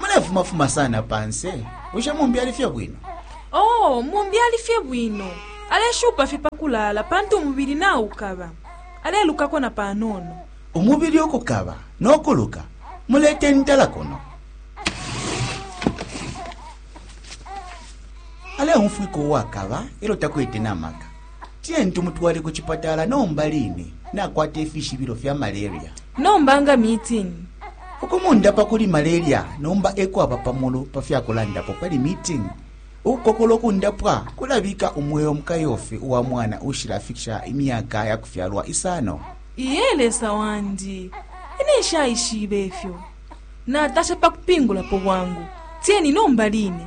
mulefumafuma sana panse bushe mumbi ali fye bwino oo mumbi ali fye bwino aleshupa fye pakulaala pantu umubili naukaba alelukako na panono umubili ukukaba nokuluka mulete ntala kuno aleumfwika uwakaba elo takwete namaka Tiyeni tumutwale ku chipatala nomba line nakwata ifishibilo fya malaria. Nomba nga meeting. Ukumundapa kuli malaria nomba ekwaba pamulu pafyakulandapo pali meeting. Ukukokola ukundapwa kulabika umweo mukayofi uwa mwana uushilafikisha imyaka yakufyalwa isano. Iye Lesa wandi, ine nshaishibe ifyo. Natasha pakupingulapo bwangu. Tiyeni nomba line.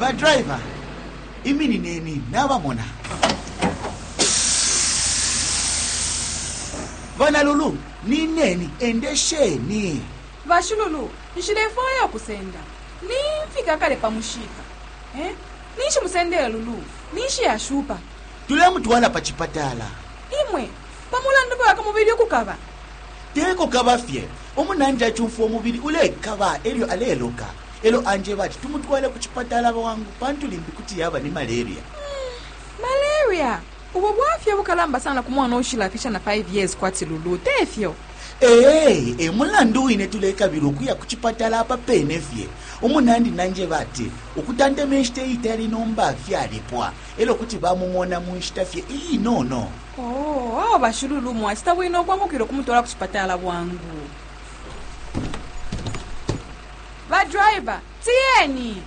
badraiva iminineni nabamona bana lulu nineni endesheni bashululu nshilefwaya okusenda nimfika kale pa mushika eh? ninshi musendele lulu ninshi yashupa tulemutwala pa chipatala imwe pa mulandu bwaka mubili ukukaba Te kukaba fye, umunandi acumfwa umubili ulekaba e lyo aleloka, e lyo anjeba ati tumutwale ku cipatala bwangu pantu limbi kuti yaba ni malaria. Malaria! Ubo bwafya ubukalamba sana ku mwana uushilafisha na 5 years kwati Lulu, te fyo? Ee, e mulandu wine tulekabila ukuya ku cipatala apa pene fye. Umunandi nanjeba ati ukutantema inshita iitali nomba fyalipwa e lyo kuti bamumona mu nshita fye iinono. Oh, awo bashululu mwacita bwino ukwambukila ukumutwala ku cipatala bwangu badriver tiyeni